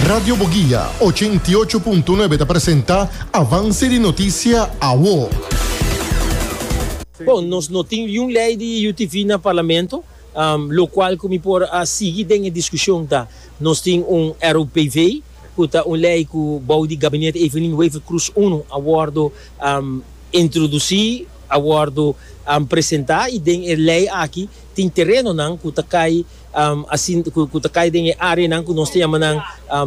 Radio Boguia ochenta i ocho punto nuebe ta presenta Avance di Noticia Awo. Bon, nos no tin liun lei di UTV na Parlamento, locual cu mi por a sigui den e discusion ta, nos tin un ROPV, cu ta un lei cu bou di Gabinete Evelyn Wever Croes uno a wordo introduci, a wordo presenta y den e lei aki tin terenonan cu ta cay Asin ku ta kai den e areanan ku nos ta yama nan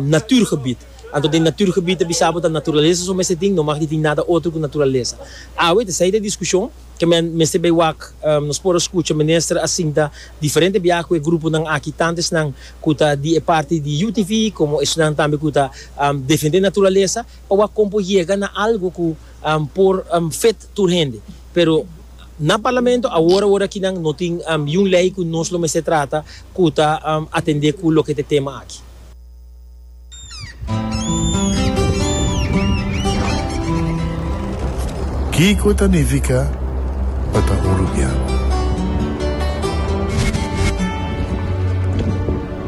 naturgebied. Anto den naturgebied ta bisabo ta naturalesa su mester tin, no mag di tin nada otro ku naturalesa. Awe ta esei ta e diskushon, ke men mester bai wak. Nos por a skucha minister a sinta diferente biaha ku e gruponan aki, tantu esnan ku ta di e parti di UTV komo esnan tambe ku ta defende naturalesa, pa wak kon por yega na algu ku por fet tur hende. Pero. Na Parlamento awor awor aki nan no tin yiun ley cu nos lo mester trata cu ta atende cu loke ta e tema aki. Kico ta nifica pa ta un rubian?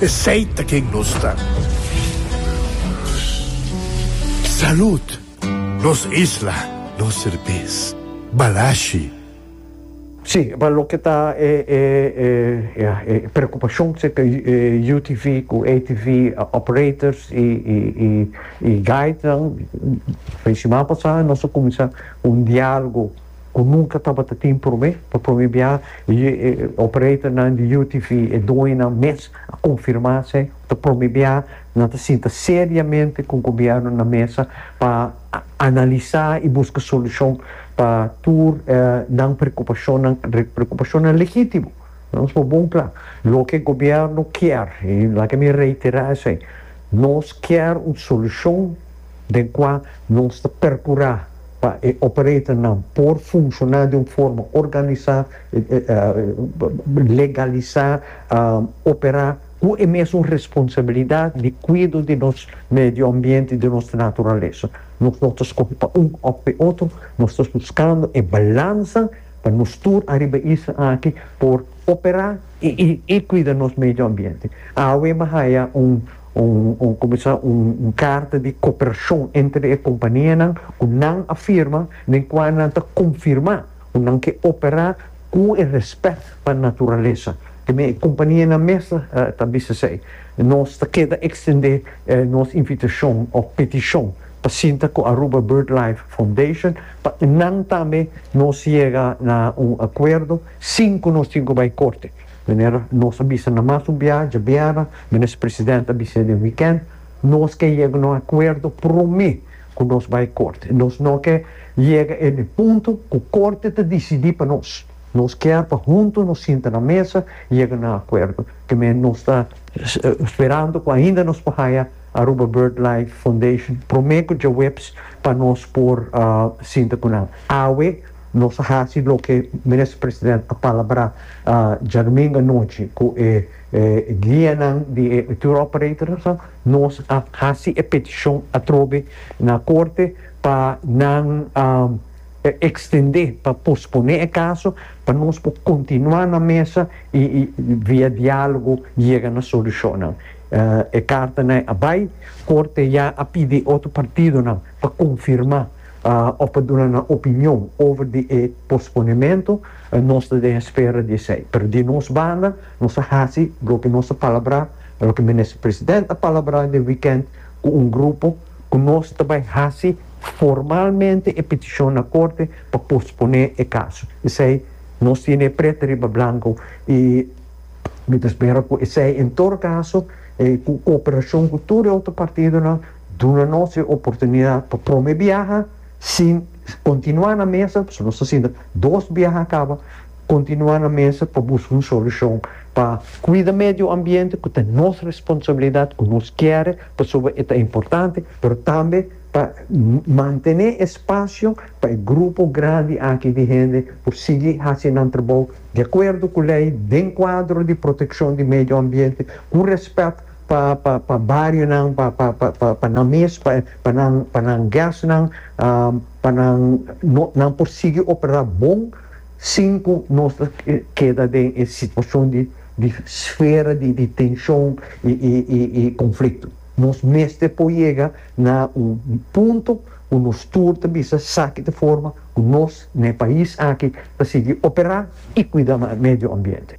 Esey ta ken nos ta. Salud! Nos isla, nos serbes. Balashi. Sí, pa loke ta e e e ya e preocupacion serka e UTV cu ATV operators y y y y guide nan, fin de semana pasa nos a cuminsa un dialogo. ku nunka tabata tin promé. Pa promé bia e opereternan di UTV, e dueñonan mes a konfirmá esei. Ta promé bia nan ta sinta seriamente ku gobièrnu na mesa pa analisá i buska solushon pa tur nan preokupashonnan, preokupashonnan legítimo. Nos por bon kla, loke e gobièrnu kier, i laga mi reiterá esei, nos kier un solushon. den kua nos ta perkurá pa e operatornan por funshoná di un forma organisá, legalisá, operá ku e mesun responsabilidat di kuido di nos medio ambiente, di nos naturalesa. Nos no ta skohe pa un òf pa e otro, nos ta buskando e balansa pa nos tur ariba e isla aki por operá i kuida nos medio ambiente. Awe mi haya un Un kuminsá un karta di koperashon entre e kompanianan ku nan a firma den kua nan ta konfirmá ku nan ke operá ku e rèspèt pa naturalesa. Teme e kompanianan mes ta bisa esei. Nos ta keda ekstendé nos invitashon òf petishon pa sinta ku Aruba BirdLife Foundation pa nan tambe nos yega na un akuerdo sin ku nos tin ku bai korte. Manera nos a bisa na mas un biaha djabiera, Minister President a bisa den weekend, nos ke yega na un acuerdo prome cu nos bay Corte. Y nos no ke yega en e punto cu Corte ta dicidi pa nos. Nos kier pa hunto nos sinta na mesa y yega na un acuerdo. Te men nos ta sperando cu ainda nos por haya Aruba BirdLife Foundation prome cu djaweps pa nos por sinta cu nan. Awe. Nos a hasi loke Minister President a palabrá djadumingu anochi ku e guianan di e tour operators. Nos a hasi e petishon atrobe na korte pa nan ekstendé, pa posponé e kaso pa nos por kontinuá na mesa i via diálogo yega na solushonnan. E kartanan a bai, korte ya a pidi otro partidonan pa konfirmá. òf pa duna nan opinion over di e posponementu, nos ta den espera di esei. Pero di nos banda, nos a hasi loke nos a palabrá, loke Minister President a palabrá den wikènt ku un grupo, ku nos ta bai hasi formalmente e petishon na korte pa posponé e kaso. P'esei nos tene e pret riba blanko i mi ta spera ku esei, en tur kaso, ku koperashon ku tur e otro partidonan, Duna nos e oportunidad pa prome biaha sin continua na mesa, pasobra nos ta sinta dos biaha a caba, continua na mesa pa busca un solucion pa cuida medio ambiente cu ta nos responsabilidad cu nos kere pasobra e ta importante, pero tambe pa mantene espacio pa e grupo grandi aki di hende por sigui haci nan trabou di acuerdo cu ley den cuadro di proteccion di medio ambiente cu respet. pa pa pa barionan pa pa pa pa pa nan mes pa pa nan pa nan guestnan pa nan no nan por sigui opera bon sin cu nos ta keda den e situacion di di sfera di di tencion y y y y conflicto nos mester por yega na un punto cu nos tur ta bisa saki ta forma cu nos na e pais aki ta sigui opera y cuida medio ambiente.